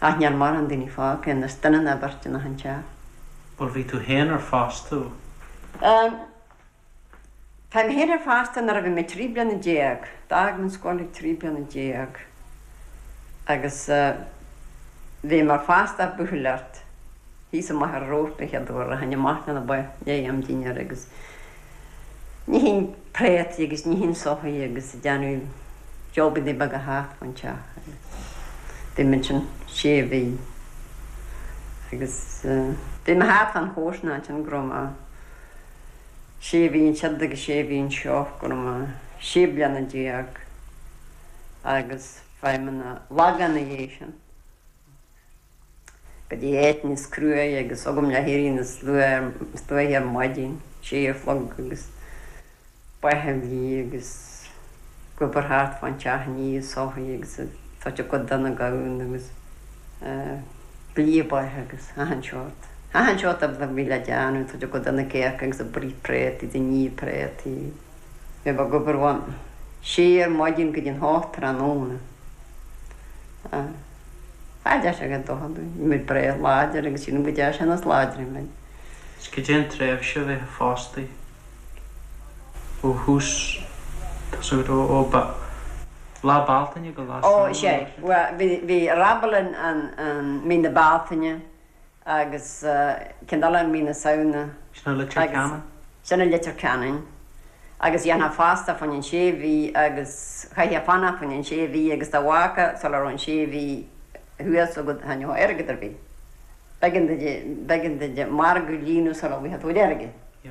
Ach níl mórán daoine fágtha anois duine ná beirt in achan teach. Bhuel bhí tú féin ar fostú. Ehm. Tá mé féin ar fostú nuair a bhí mé trí bliana déag. D'fhág mé an scoil ag trí bliana déag agus bhí mé ar fostú ag buachailleacht thíos amuigh ar an Róimh ba chéad uair a tháinig amach leis na ba i ndiaidh am dinnéir agus Níochán préataí agus níochán soithí agus ag déanamh jabannaí beaga thart an teach agus bhí mé ansin sé mhí agus bhí mé thart fán chomharsanacht ansin go raibh mé sé mhí ansiud agus sé mhí anseo go raibh mé sé bliana déag agus chuaigh mé chun an Lagáin ina dhiaidh sin. go dtí áit níos cruaidhe agus bhí agam le héirí níos luaithe ar maidin, sé a chlog agus ba a bhlí agus ag obair thart fán teach ag ní soithí agus ag tabhairt a gcuid do na gamhna agus ag blí ba agus achan seort, achan seort a bhí le déanamh, ag tabhairt a gcuid do na cearca agus ag bruith préataí, ag ní préataí. Bhí mé ag obair óna sé ar maidin go dtí an hocht tráthnóna. Sea. Cha dtearn sé go dona dúinn. Bhí muid breá láidir agus sílim go dtearn sé níos láidre muid. Is cad é an tréimhse a bheifeá fostaithe ó thús, tosú ró ó Lá Bealtaine go Lá Samhna, mar sin. Ó, sea. Bhí Raibeal ann i mí na Bealtaine. agus ceann eile ann i mí na Samhna. Sin i Leitir Ceanainn? Sin i Leitir Ceanainn agus dhéanfá fostú fá choinne an sé mhí agus chaithfeá fanacht fá choinne an sé mhí agus dá bhfágfá sula raibh an sé mhí thuas agat chan fhaigheadh tú airgead ar bith. B'éigean duit, b'éigean duit do mhargadh a líonadh sula bhfaigheadh tú airgead. Yeah.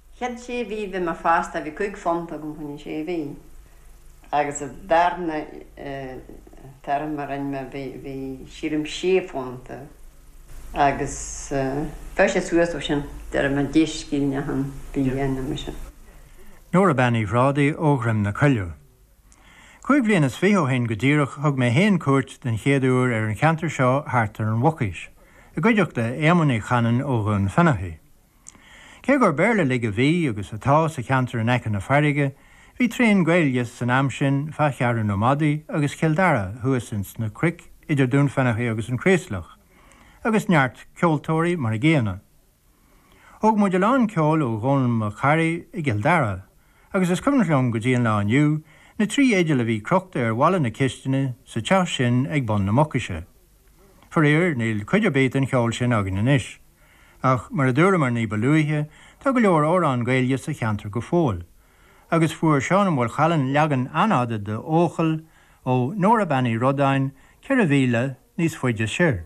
Chéad sé mhí a bhí mé fostaithe, bhí cúig phunta agam fá choinne sé mhí agus an darna turas a rinn mé bhí sílim sé phunta agus chuaigh sé suas ó sin de réir mar deis scírinne achan bhliain ama sin. Nóra Bean Uí Ghrádaigh ó Dhroim na Coilleadh. Cúig bhliain is fiche ó shin go díreach thug mé fhéin cuairt den chéad uair ar an cheantar seo thart ar an Mhucaois, i gcuideachta Éamoinn Uí Chanainn ó Dhún Fionnachaidh. Cé gur Béarla uilig a bhí, agus atá, sa cheantar in aice na farraige, bhí tréan Gaeilge san am sin fá Cheathrú na Madadh agus Chill Darach thuas ins na cnoic idir Dún Fionnachaidh agus an Chraoslach, agus neart ceoltóirí mar an gcéanna. Thóg muid a lán ceoil ó Dhónall Mac Fhearraigh i gCill Darach, agus is cuimhneach liom go dtí an lá inniu na trí fhidil a bhí crochta ar bhalla na cistine sa teach sin ag bun na Mucaise. Faraor, níl cuid ar bith den cheol sin againn anois. Ach, mar a dúramar ní ba luaithe, tá go leor amhrán Gaeilge sa cheantar go fóill. Agus fuair Seán Ó Maolchallann leagan an-fhada de 'Eochaill', ó Nóra Bean Uí Rodáin, ceithre mhíle níos faide soir.